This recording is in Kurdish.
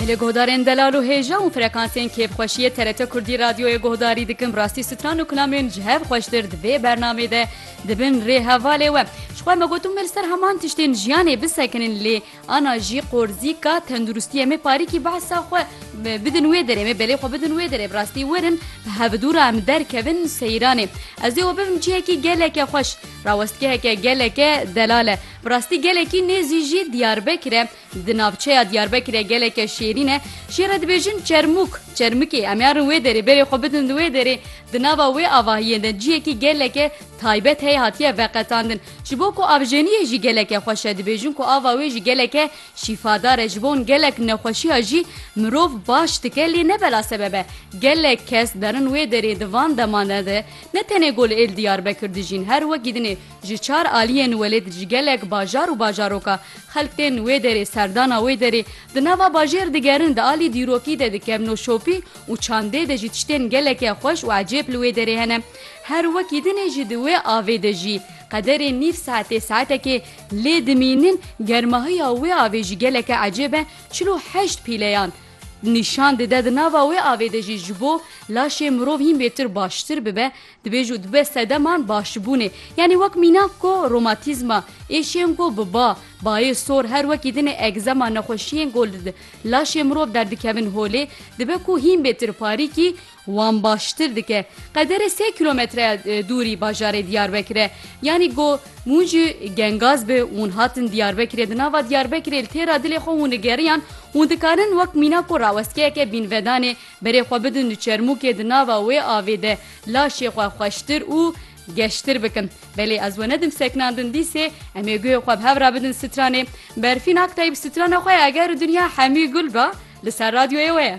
Em li guhdarên delal û hêja û frekansên kêfxweşiyê TRT Kurdî Radyoyê guhdarî dikin. Bi rastî stran û kilamên ji hev xweştir di vê bernamê de dibin rê hevalê we. Ji xwe me gotin me li ser heman tiştên jiyanê bisekinin lê ana jî qorzîka tenduristiyê me parîkî behsa xwe bidin wê derê me belê xwe bidin wê derê bi rastî werin bi hevidûra em derkevin seyranê. Ez dê we bibim cihekî geleke xweş. Rawestgeheke geleke delal e. Bi rastî gelekî nêzî jî Diyarbekir e. Di navçeya Diyarbekirê geleke şêrîn e. Şê re dibêjin Çermûk, Çermikê. Em yarin wê derê berê xwe bidin di wê derê. Di nava wê avahiyên de ciyekî geleke taybet heye hatiye veqetandin. Ji bo ku avjeniyê jî geleke xweş e dibêjin ku ava wê jî geleke şîfadar e. Ji bo gelek nexweşiya jî mirov baş dike lê ne bela sebeb e. Gelek kes derin wê derê di van deman de ne tenê gul êl Diyarbekir dijîn her wekî dinê Ji çar aliyên welêt ji gelek bajar û bajaroka, xelk tên wê derê, serdana wê derê, di nava bajêr digerin, di alî dîrokî de dikem noşopî û çandê de jî tiştên geleke xweş û ecêb li wê derê hene. Her wekî din ê jî di wê avê de jî. Qederê nîv saetê saetekê lê dimînin germahiya wê avê jî geleke ecêb e, çil û heşt pîleyan nîşan dide di nava wê avê de jî ji bo laşê mirov hîn bêtir baştir bibe Dibêj û dibe sedeman başibûnê. Yanî wek mînak ku romatîzma, êşiyên ku bi ba, bayê sor her wekî din ê egzema nexweşiyên ku li laşê mirov derdikevin holê, dibe ku hîn bê tirparîkî wan baştir dike. Qederê sê kîlometreya dûrî bajarê Diyarbekir e. Yanî ku hûn ji Gengaz bi hûn hatin Diyarbekirê, di nava Diyarbekirê li têra dilê xwe hûn digeriyan, hûn dikarin wek mînak ku rawestkeyeke bînvedanê, Berê xwe bidin di çermûkê di nava wê avê de laşê xwe xweştir û geştir bikin. Belê ez we nedim seknandin dîsê em ê guhê xwe bi hev re bidin stranê. Berfîn Aktayîb strana xwe ya Eger Dinya Hemî Gul be li ser radyoyê we ye.